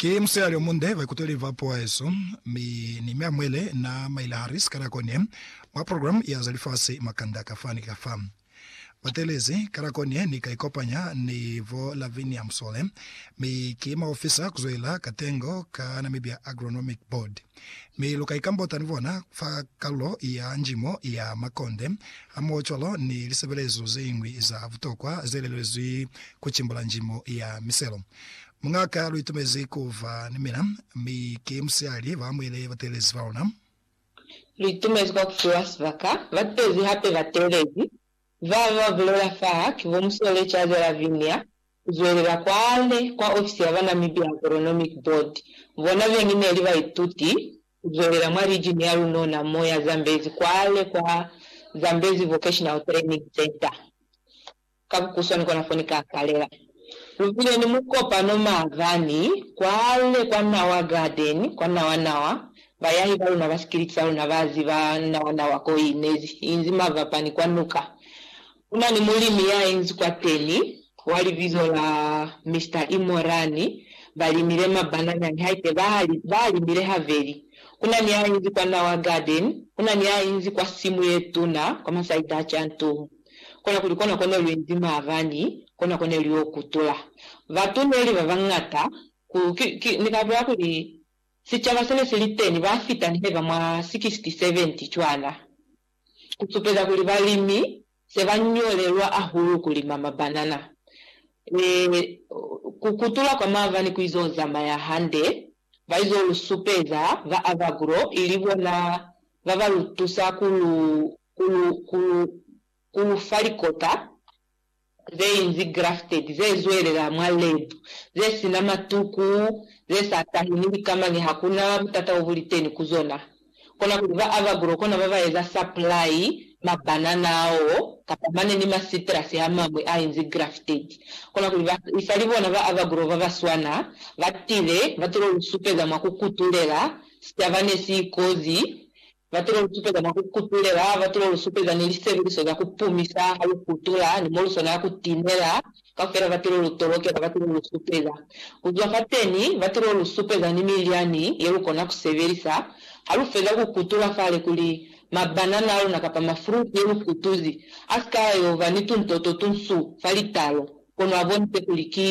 Ki musiyali omunde, baikuteli ba puo yesu, mi ni Mea Muele na maile Harris ka nako ye, mwa program ya za lifasi makanda kafa ni kafa. Bateelezi ka nako ye ni ka ikopanya ni bo Lavinia Msole, mi ki maofisa kuzwelela ka tengo ka Namibia Agronomic Board. Mi lu ka ikambota ni bona fa kalulo ya njimo ya makonde hamoho cwalo ni lisebelezo zeñwi za butokwa zelelezwi kucimbula njimo ya miselo. Muñaka lu itumezi kuba ni mina, mi ki musihali ba amuhele bateelezi baluna. Lu itumezi kwa kufiwa sibaka. Bateezi hape bateelezi Ba ba bulela fa ki bo Musole Jade Lavinia, ku zwelela kwale kwa ofisi ya ba Namibia Agronomic Board. Bona beñi ne li baituti ku zwelela mwa lijini ya lunona mo ya Zambezi kwale kwa Zambezi Vocational Training Centre, ka bukuswani kona fo ni ka kalela. Lu bile ni mukopano maabani kwale kwa Nawa Garden kwa Nawanawa Bayahi ba luna ba sikiliti sa luna ba ziba nawa nawa ko i nezi i nzi mavapani kwa nuka. Ku na ni mulimi ya inzi kwateni wa libizo la Mister Imorani. Ba limile mabanana nihaike ba a limile habeli. Ku na ni ya inzi kwa nawa garden. Ku na ni ya inzi kwa simu ye tuna kwa masaidaci a ntuhu. Kona kuli kona ko ne lu inzi maabani, kona ko ne lu yo kutula. Batu ne li ba bañata, ni ka bolela kuli, Sicaba sene siliteni ba fita ni heba mwa 60-70 cwana, ku supeza kuli balimi se ba ñolelwa hahulu ku lima mabanana. Ee, ku kutula kwa mava ni ku izo zamaya hande, ba izo lu supeza ba Avagro ili bona ba ba lu tusa ku lu, ku lu, ku lu, ku lu fa likota zeinzi grafted, ze zwelela mwa lab, ze sina matuku, ze sa tahi ni likama ni ha ku na butata bo bu li teni ku zona. Kona kuli ba Avagro kona ba ba eza supply ma banana ao kapa mane ni ma citrus a mañwi a inzi grafted. Kona kuli ba isali bona ba Avagro ba ba swana ba tile ba tulo lu supeza mwa ku kutulela sicaba ne si ikozi Batulo lusupeza mwa ku kutulela, batulo lusupeza ni lisebeliso za ku pumisa ha lu kutula, ni mo lu swanela ku tinela. Kaufela batulo lu tolokela batulo lu supeza. Ku zwa fateni, batulo lu supeza ni milyani ye lu kona ku sebelisa ha lu feza ku kutula fale kuli mabanana a luna kapa mafruti ye lu kutuzi a si ka yo ba ni tuntoto tu nsu fa litalo, kono a bonise kuli ki,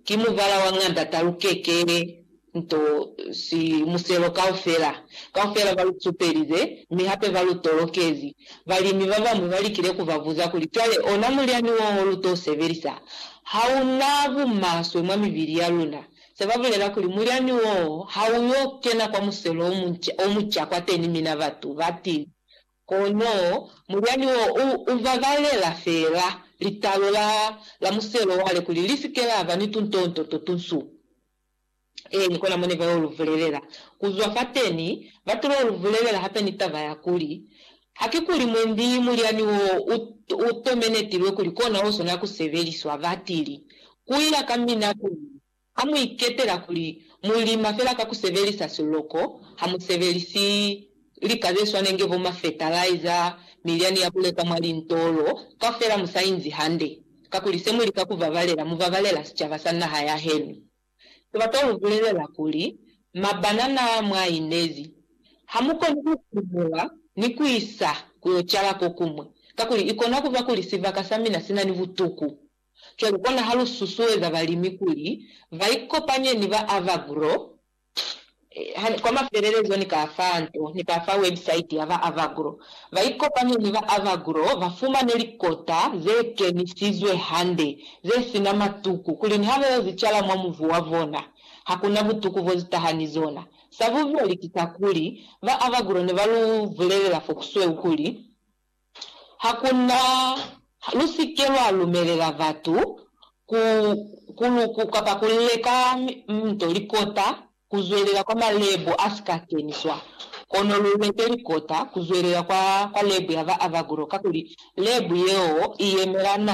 ki mubala wa ñanda ta lukeke. nto si muselo kaufela. Kaufela ba lu supelize, mi hape ba lu tolokezi. Balimi ba bañwi ba likile ku ba buza kuli, Cwale, ona mulyani wo lu t'o sebelisa, ha u na bumaswe mwa mibili ya luna. Se ba bulela kuli, Mulyani wo ha u y'o kena kwa muselo o munca, o muca kwateni mina batu ba tili. Kono mulyani wo u, u ba balela fela litalo la, la muselo wale kuli li si ke la ba ni tuntonto to tunsu. Ee, ni kona mo ne ba yo lu vulelela. Ku zwa fateni, ba tilo lu vulelela hape ni taba ya kuli, Haki kuli mwendi mulyani wo u, u tomenetilwe kuli kona o swanela ku sebeliswa. Ba tili, Ku ya ka mina kuli, ha mu iketela kuli mu lima fela ka ku sebelisa siloko, ha mu sebelisi. Lika ze swana inge bo mafetalaiza, milyani ya ku leka mwa lintolo, kaufela mu sa inzi hande. Kakuli se mu lika ku babalela, mu babalela sicaba sa naha ya henu. Ki bata lu bulelela kuli, Mabanana mwa inezi, ha mu koni ku kumbula ni ku isa ku yo cala ko kuñwi, kakuli i kona ku ba kuli sibaka sa mina si na ni butuku. Cwale kona ha lu susueza balimi kuli ba ikopanye ni ba Avagro Kwa mafelelezo, ni ka fa nto, ni ka fa website ya ba Avagro. Ba ikopanye ni ba Avagro ba fumane likota ze kenisizwe hande, ze si na matuku, kuli niha ba yo zi cala mwa muvu wa bona, ha ku na butuku bo zi taha ni zona. Sa bubeli ki kakuli, ba Avagro ne ba lu bulelela fo kusweu kuli, Ha ku na, lu si ke lwa lumelela batu ku ku lu ku kapa ku leka nto likota ku zwelela kwa malebu a si ka keniswa, kono lu leke likota ku zwelela kwa, kwa lebu ya ba Abaguro, kakuli lebu yeo i yemela na